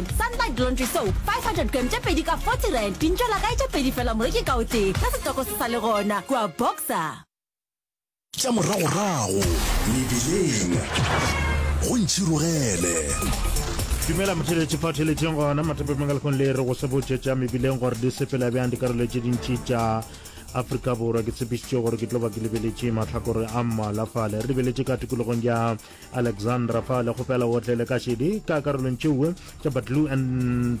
Sunlight Laundry Soap 500 gram tše pedi ka 40 rand, dintšwa la kae tše pedi fela moreki ka o tee, se setoko se sa le gona kua Boxer. Tša moragorago mebileng go ntšhirogele. Dumela motheletši fa theletšeng gona mathape mangalekong le re go se botše tša mebileng gore di sepela bjang dikarolo tše dintši tša afrika borwa ke tshepišitše gore ke tlo ba ke lebeletše matlhakore a mmalafale re lebeletše ka tikologong ya Alexandra fa le kgopela o tle le ka šedi ka karolong tšeue tša batlu and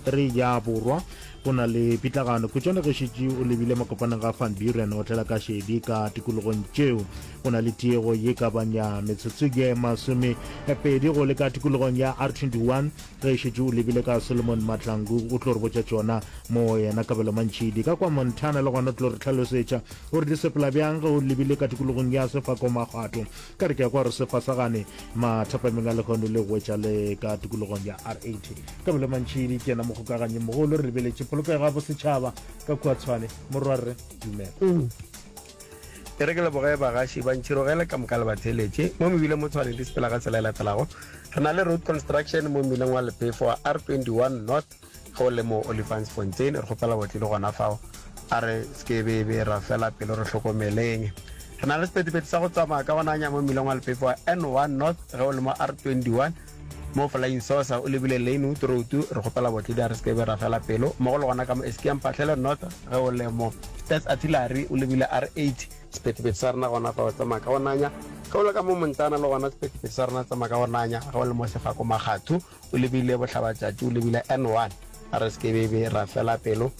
3 ya borwa go na le pitlagano kutšwane ge šetše o lebile makopaneng ga van buren o tlela ka šedi ka tikologong tšeo go na le tiego ye ka banya metsotso ye masome pedi go le ka tikologong ya r 21 ge šetše o lebile ka solomon matlangu o tlo re botša tšona mo yena kabelo mantšhidi ka kwa montana le gona o tlo re tlhalosetša gore di sepela bjang ge o lebile ka tikologong ya sefako magato Ka re ke a kwa gore se fasagane mathapameng a lehono le go wetša le ka tikologong ya R80. Ka mele mantši di kena mokgokaganying mogolo, re lebeletše polokego ya bosetšhaba ka kua Tshwane. Morwa rre, dumela. Eng? E re ke leboge bagaši ba ntšhirogele ka moka le ba theeletše mo mebileng mo Tshwane le sepela ka tsela e latelago. Re na le road construction mo mmileng wa Lepefo wa R21 North Ge o le mo Olifantsfontein, re kgopela botle le gona fao. A re se ke be be ra fela pelo, re hlokomeleng. Re na le sephethephethe sa go tsamaya ka go nanya mo mmileng wa lepepa wa N1 North. Ge o le mo R21, mo Flying Saucer o lebile Lynwood Road, re kgopela botle di a re se ke be ra fela pelo, mmogo le gona ka mo Eskia Mphahlele North. Ge o le mo Stats Artillery o lebile R8. Sephethephethe sa rena gona fao tsamaya ka go nanya. Ge o le ka mo Montana le gona sephethephethe sa rona tsamaya ka go nanya. Ge o le mo Sefako Makgatho. O lebile bohlabatšatši, o lebile N1. A re se ke be be ra fela pelo.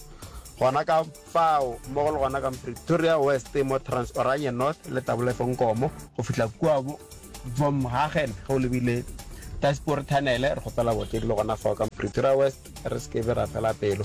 Gona ka fao, mmogo le gona ka Mpretoria West, mo Transoranje North le Tabolefe Nkomo, go fihla kua bo Vomhagen ge o lebile Daspoort Tunnel, re kgopela bootledi le gona fao ka Mpretoria West re se ke be ra fela pelo.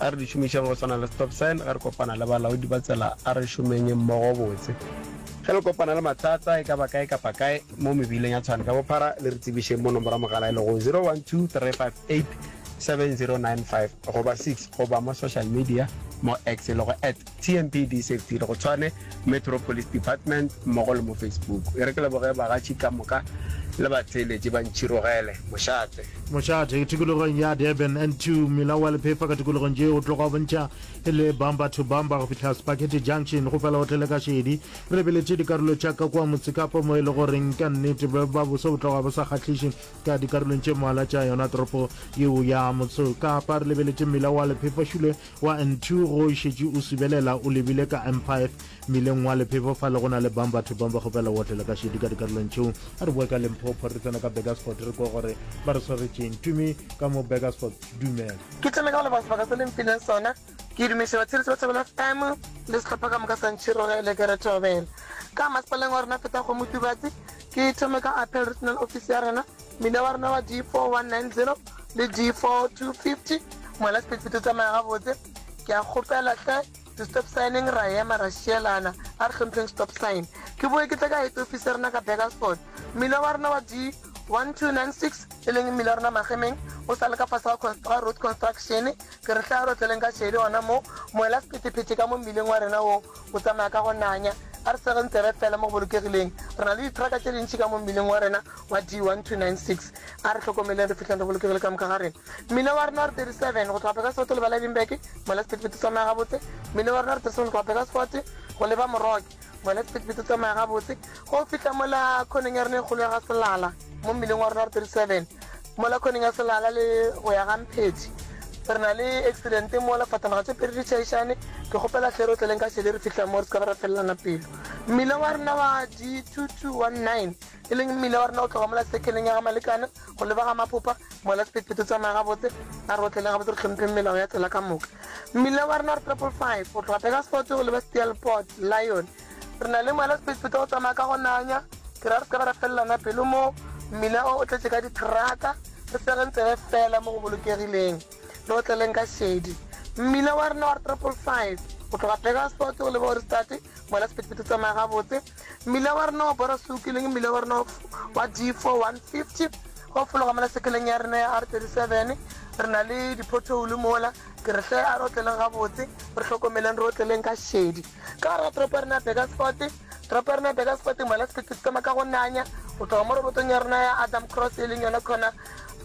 A re di šomišeng go swana le stop sign ge re kopana le balaodi ba tsela, a re šomeng mmogo botse. Ge le kopana le mathata e ka ba kae kapa kae mo mebileng ya Tshwane ka bophara, le re tsebišeng mo nomoro ya mogala e lego 0123587095 goba 6 goba mo social media mo X e lego at. TMP Disev Tiro go tshwane Metro Police Department mmogo le mo Facebook. E re ke leboge bagatši ka moka le batheeletši ba Ntšhirogele mošate. Mošate, tikologong ya Durban, N2, mmila wa Lephefa ka tikologong tše o tloga o bontšha e le bumper to bumper go fihla Spaghetti Junction go fela o tlele ka šedi. Re lebeletše dikarolo tša ka kua Motsekapa mo e le goreng ka nnete bo ba boso bo tloga bo sa kgahliše ka dikarolong tše mmalwa tša yona toropo yeo ya Motsekapa. Re lebeletše mmila wa Lephefa-Shule Wa Ntu go šetše o subelela o lebile ka M5 mmileng wa Lephefo fa le go na le bang batho bang ba kgopela go otlela ka šedi ka dikarolong tšeo. A re boe ka Limpopo re tsena ka Burgersfort re kwe gore ba re swaretšeng. Tumi, Ka mo Burgersfort? Dumela. Ke tsene ka go leboga sebaka se le mphileng sona. Ke dumeše batsheletši ba Thobela FM le sehlopha ka moka sa Ntšhirogele ke re thobela. Ka masepaleng wa rena Phethagomotubatse, ke thome ka Appeal Regional Office ya rena Mmino wa rena wa D4190 le D4250 mola Speedfit o tsamaya gabotse. Ke a kgopela hle, di-stop sign-eng ra ema ra šielana, a re hlompheng stop sign. Ke boe ke tle ka head office ya rena ka Burgersfort. Mmino wa rena wa D1296, e leng mmino wa rena magemeng, o sa le ka fase ga ga Road Construction. Ke re hle a re otleleng ka šedi gona moo, mola sephethephethe ka mo mmileng wa rena woo. Go tsamaya ka go nanya. A re sege ntse re etlela mo go bolokegileng. Re na le dithraka tše dintši ka mo mmileng wa rena wa D1296. A re hlokomeleng re fihleng re bolokegile ka moka ga rena. Mmila wa rena wa R37 go tloga Pegasfote le Baladinburg, mo la sephethephethe o tsamaya gabotse. Mmila wa rena wa R37 go tloga Pegasfote go leba Moroke, mo la sephethephethe o tsamaya gabotse. Go fihla mo la khoneng ya rena e kgolo ya ga Selala, mo mmileng wa rona wa R37. Mo lakhoning ya Selala le go ya ga Mpheti re na le accident mo lefatanaga tše pedi di tšhaišane, ke kgopela hle re tleleng ka šele re fihle mo re se ka be ra felelana pelo. Mmila wa rena wa D2219 e leng mmila wa rena o tloga mola sekeleng ya ga Malekane go leba ga Maphopa, mola sephethephethe o tsamaya gabotse, a re otleleng gabotse re hlompheng melao ya tsela ka moka. Mmila wa rena wa Triple Five o tloga Burgersfort go leba Steelpoort, Lion, Re na le moela sephethephethe o tsamaya ka go nanya, ke ra re seka ba ra felelana pelo mo. Mmila o o tletše ka dithraka, re segeng tsebe fela mo go bolokegileng le go tleleng ka šedi. Mmila wa rena wa re triple five go tloga Pegasort go leba Ohrigstadt, moela sephethephethe o tsamaya gabotse. Mmila wa rena wa Borasouki le mmila wa rena wa D four one fifty go fologa mola sekeleng ya rena ya R thirty seven, re na le diphotoulu mola, ke re hle a re otleleng gabotse, re hlokomeleng re otleleng ka šedi. ka gare ga toropo ya rena ya Burgersfort. Toropo ya rena ya Burgersfort moela sephetho-setema ka go nanya go tloga mo robotong ya rona ya Adam Cross e leng yona corner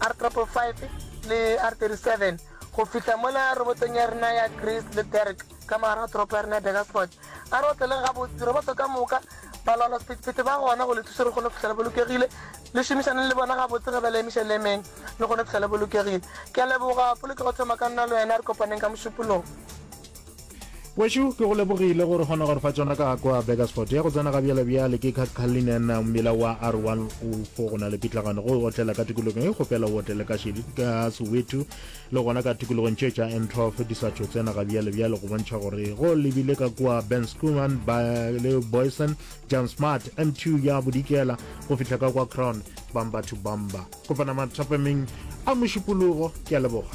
R555 le R37 go fihla mola robotong ya rena ya Greece le Derrick ka mogare ga toropo ya rena ya Burgersfort. A re otleleng gabotse, diroboto ka moka, balwalwa sephetho-sephetho ba gona go le thusa gore kgone go fihla le bolokegile. Le šomišaneng le bona gabotse ge ba le emiša le emeng le kgone go fihla le bolokegile. Ke a leboga, polokego thoma ka nna le wena, re kopaneng ka mošupolong. wešo ke go lebogile gore kgona gore fa tsona ka kwa bakersford ya go tsena ga bjalebjale ke kakalinen mmila wa r 104 go na le pitlagano go otlela ka tikologong e kgopela o otlele ka šedi ka soweto le gona ka tikologong tše tša n12 di sa tšho tsena ga bjalebjale go bontšha gore go lebile ka kwa ben schuman le boyson john smart m2 ya bodikela go fihla ka kwa crown bamba to bamba kopana mathapameng a mošupologo ke a leboga